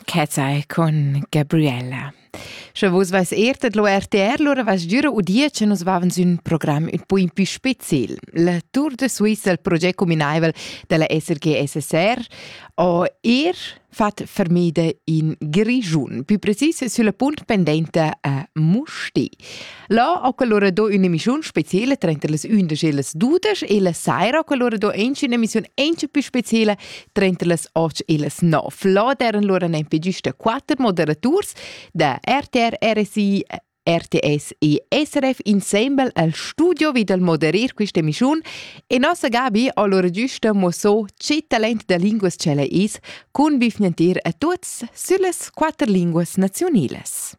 Chezai cun Gabriella. Sche vus vais er dat lo RTR, lura vas giura udia che nus vaven sün program un po in più spezial. La Tour de Suisse, il progetto combinaivel della SRG-SSR, ho er fat fermida in Grigiun, più precis sulla punt pendente a Musti. Là ho quell'ora do ün'emissiun speciela trenta las undisch e las dudesch e la saira ho quell'ora do anche un'emissiun anche più speciela trenta las otg e las nov. Là deran lura nempe giusta quatter moderaturs da RTR, RSI RTS e SRF insembel al studio vi dal moderer questa emissiun e nossa Gabi ha lura giusta mosso che talent da linguas ce la is cun vifnentir a tuts sulle quatter linguas nazionalas.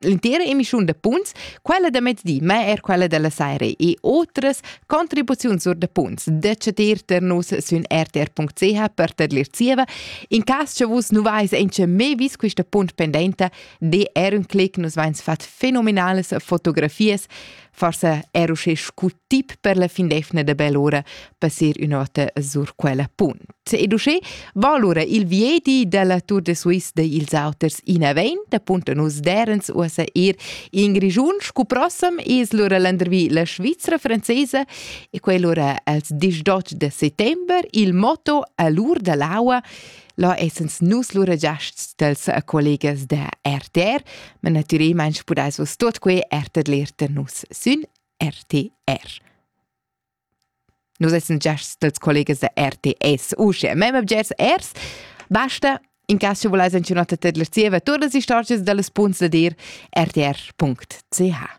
l'intera emissiun da punts, quella da mezdi, ma er quella da la saira e otras contribuziuns sur da punts da chatir tar nus sün rtr.ch per tadlir zieva. In cas cha vus nu vais aint mê vis quista punt pendenta, de er un clic nus vains fat fenomenalas fotografias Forse era uschè scu tip per la finlefna da bell'ora passir ün'ota sur quella punt. Ed uschè va allura il viedi dalla Tour de Suisse de ils auters inavent, appunto nus derens uossa ir in Grigiun, scu prossam es lura landervi la Svizzera francesa e quell'ora als 18 de settember il motto all'ur dall'aua Là essens nus lura giasts dels a collegas da RTR, ma natüralmaing pudais vos tuot que er tadler da nus sün RTR. Nus essens giasts dels collegas da RTS uschè, mem objets ers. Basta, in cas che volais anch'nota tadler zieva todas las istorgias da las punts da dir, rtr.ch.